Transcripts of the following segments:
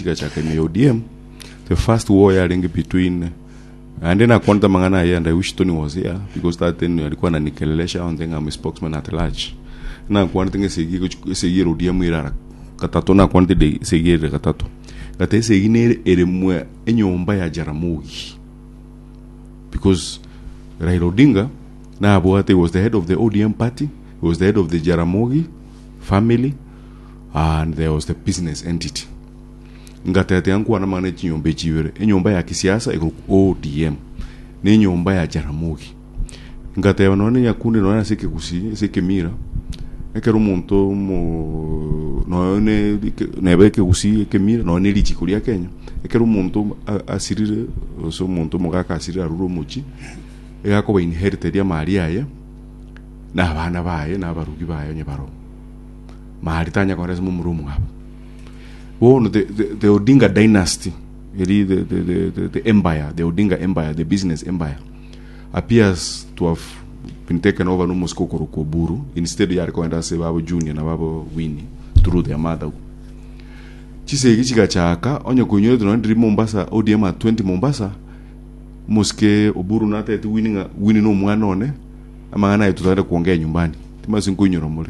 Chigachaka ime ya ODM, the first war yarenge between naende nakwanete amang'ana aye and I wish Tony was here because that time alikwana nikelelesha onde ng'a I'm a spokesman at large. Nakwanete ng'a esegi egochi- esegi ere ODM ere ara gatato nakwanete de- esegi ere gatato. Gata esegi nere ere mwa enyomba ya Jaramogi because Raila Odinga nabwate he was the head of the ODM party, he was the head of the Jaramogi family, and there was the business entity. Ngatete ankwana amang'ana echinyomba echi ibere, enyomba ya kisiasa egoku ODM ne enyomba ya Jaramogi. Ngateba nonye ne Nyakundi nonye ase ekegusi ase ekemira ekero omonto mo nonye ne eke- neba ekegusi ekemira nonye ne richiko ria Kenya ekero omonto a- asirire ase omonto omogaka asirire arure omochi egakoba inherited amaaria aye na abana baye na abarugi baye onye barobwo. Mahali tanya kore ase momura omwabo. Bono the, the, the Odinga dynasty, eri the, the, the, the, the empire, the Odinga empire, the business empire, appears to have been taken over nomosiko okorokwa Oburu, instead yare koenda ase babo Junior na babo Winnie through their mother. Chisegi chigachaka, onye koinyorete nonye ndiri Mombasa, ODM at 20 Mombasa, mosike Oburu natete Winnie ng'a Winnie nomwana one, amang'ana aye tutagete kuongea nyumbani. Timasinkoinyora more.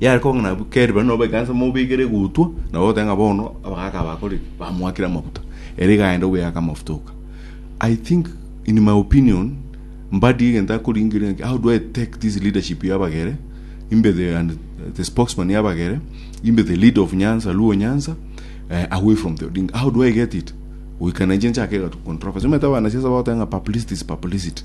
Yare koba ng'a nabu keri bare nabo ekanisa mobekere egutwa, nabo ogoteba ng'a bono abagaaka abakorire bamoakire amafuta, ere iga aende oboyake amafuta oka. I think in my opinion, mbadi egento akoringeria ng'a how do I take this leadership ya abagere, imbe the and the spokesman ya abagere, imbe the leader of Nyanza, Luo Nyanza, eh, away from the Odinga. How do I get it? Goika na inche nchake egatu controversy. Omanyete abanasiasa bagoteba ng'a publicity is publicity.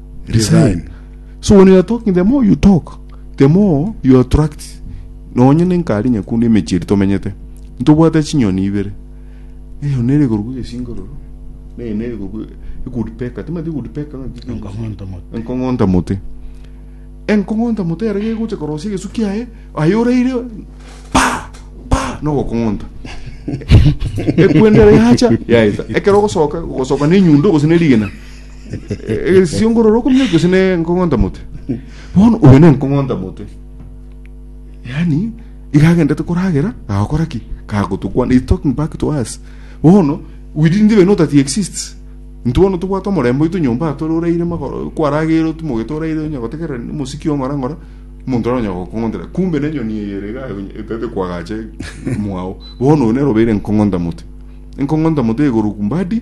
resign so when you are talking the more you talk the more you attract nonye nenkari nyakundu emechiri tomenyete ntobwate chinyoni ibere eyo nere gorugu esingororo neye nere gorugu good peka timati good peka Enkong'onta mote. enkong'onta mote enkong'onta mote ere gegocha korosia egesu kiaye aye oreire pa pa nogokong'onta ekwendere yacha yaeta ekero ogosoka ogosoka nenyundo gose nerigena egesiongororo okomia gose ne nkong'onta mote bono oyo ne nkong'onta mote yani iga agendete koragera agakora ki kagotukwana is talking back to us bono we didn't even know that he exists ntu bono tobwate omorembe oito nyomba atore oraire magoro kwaragere otumoge toraire onya gotegerera ni mosiki ong'ora ng'ora omonto ara onya gokong'ontera kumbe ne nyoni eye ere iga etete kwagache mwao bono oyo nere obeire nkong'onta mote nkong'onta mote egoro kumbadi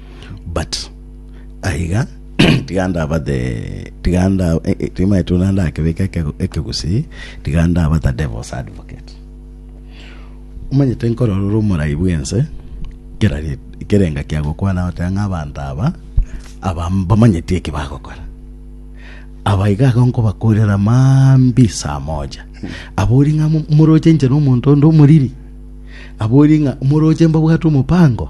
But aiga tiga ndabate tiga nda eh, eh, tiga maete ona ndakebeka eke- ekegusii tiga ndabata devil's advocate omanyete nkororora omorai bwense kera ri- kerenga kiagokwana gotea ng'a abanto aba aba mbamanyeti eki bagokora aba iga iga nkobakorera maambi saa moja abori ng'a mo- moroche inche na omonto onde omoriri abori ng'a moroche mbabwate omopango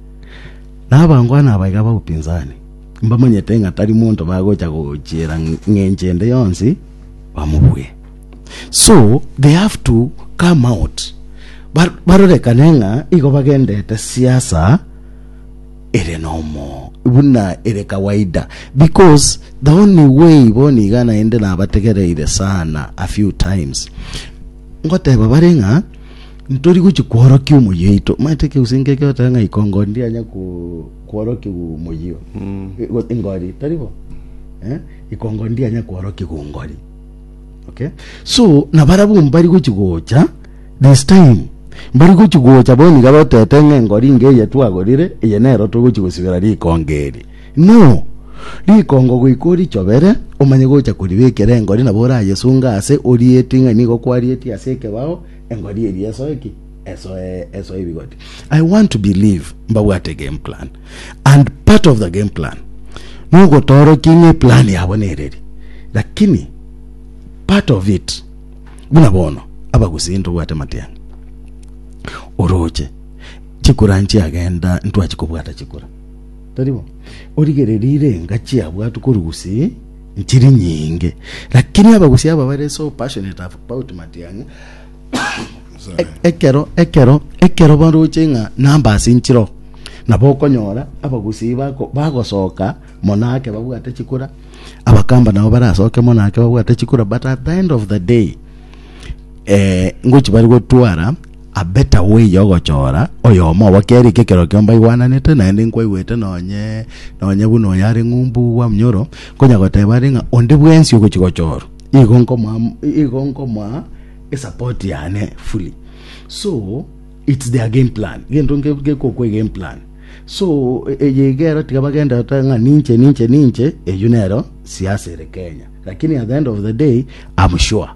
Nabangwana aba iga baupinzani, mbamanyete ng'a tari monto bagocha gochiera ng'encho ende yonsi bamobue. So they have to come out ba- barorekane ng'a igo bagendete siasa ere nomo buna ere kawaida because the only way boni iga naende nabategereire sana a few times ngoteba bare ng'a Ntori gochia kworokia omoyio oito, omanyete ekero gose nkeke oteba ng'a ikongo ndianya ko- kworokigwa omoyio e- go- engori, tari bo? Eh, ikongo ndianya kworokigwa engori. Okay? So, nabarabwo mbari gochia gocha this time, mbari gochia gocha bono iga batete ng'a engori inga eye twagorire, eye nero togochia gosibera rikongo eri. No! Rikongo goika orichobere, omanye gocha koribekera engori nabo orayesunga aase, orieti ng'a nigo kwarietie ase ekebao, Engori eria esoe ki? Esoe, esoe ebigoti. I want to believe mbabwate game plan and part of the game plan nogotorokia ng'e plan yabo nereri lakini part of it buna bono abagusi ntobwate matiang'a oroche chikura nchiagenda ntwachi kobwata chikura taribo origererire engachi yabwatu korigusi Nchiri nyinge, lakini abagusia aba bare so passionate about matiang'a, sorry, ekero ekero ekero baroche ng'a namba ase nchiro, nabo okonyora abagusi bako bagosoka mono ake babwate chikura, abakamba nabo barasoke mono ake babwate chikura but at the end of the day, ngochi bare gotwara Abeta weya ogochora, oyomo obo kere eke kerokio mbaigwananete, naende nkwaigwete nonye nonye buna oyo are ng'umbu bwa mnyoro, nkonya goteba are ng'a onde bwensi ogochi gochorwa, igo nkomoa igo nkomoa esapoti yane fully. So it's their game plan, gento nke gekokwa egame plan. So eye iga ero tiga bagende gotoa ng'a ninche ninche ninche, eyio nero siasa ere Kenya. Lakini at the end of the day, I'm sure.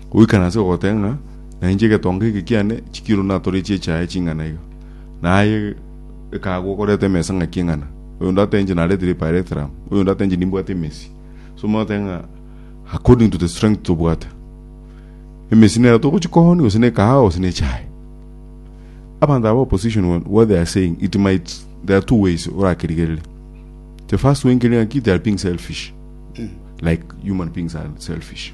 Goikana ase ogoteba ng'a, Nainche egetonga eke kiane chikiru natorechie echaye ching'ana iga, na aye ekagwa okoreta emesa ng'aki eng'ana, oyonde atenche naretire epaerethrame, oyonde atenche nimbwate emesi. So omanye oteba ng'a according to the strength tobwate. Emesi nero togochia kooni gose na ekahawa gose na echaye. Abanto aba opposition bono what they are saying it might there are two ways orakerigerere. The first way nkerire ng'aki they are being selfish like human beings are selfish.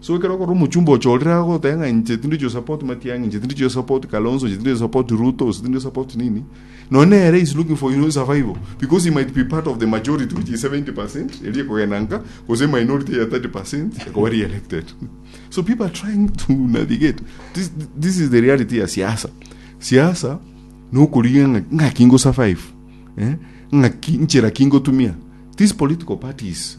So ekero okorora omochumba ocho orire agoteba ng'a inche tindi to support Matiang'i, inche tindi to support Kalonzo, inche tindi to support Ruto, inche tindi to support nini, nonye nere is looking for his survival because he might be part of the majority which is 70% eria ekogenda nka gose minority ya 30% ekoba re-elected. So people are trying to navigate. This, this is the reality ya siasa. Siasa ni okorigia ng'a- ng'aki ngosurvive, eh? ng'aki nchera ki ngotumia. These political parties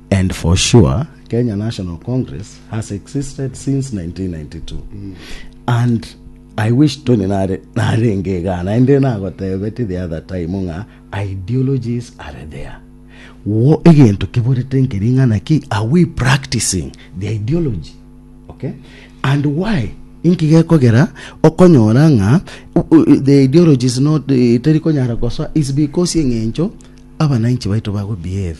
And for sure Kenya National Congress has existed since 1992 and I wish Tony nare narenge igaa naende nagotebetie the other time ng'a ideologies are there wo egento kiborete nki ring'ana ki are we practicing the ideology okay and why inki gekogera okonyora ng'a u- u- the ideology is not eh, teri konyara gosoa is because eng'encho abananchi baito bago behave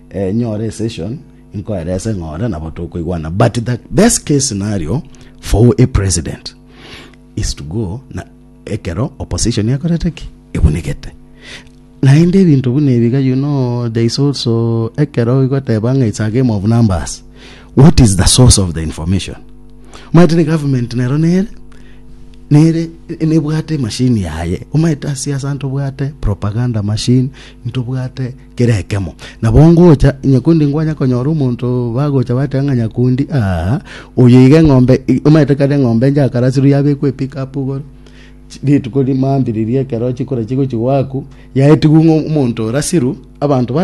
Enyore esession inkoerese ng'a ore nabo tokoigwana but the best case scenario for a president is to go na ekero opposition ekorete ki ebunigete naende ebinto buna ebiga you know there is also ekero igoteba ng'a it's a game of numbers what is the source of the information omanyete ni government nero nere nere nebwate machine yaye omanyete ase asa ntobwate propaganda machine ntobwate Kera ekemo nabo ngocha nyakundi nkwanya konyora omonto bagocha bateba ng'a nyakundi aa oyo iga eng'ombe i- omanyete kare eng'ombe nchakarasirwe yabekwa epikapu igoro Chi- rituko rimambiririe ekero chikore chigochi gwaku yaetigwa ng'a omonto orasirwe abanto ba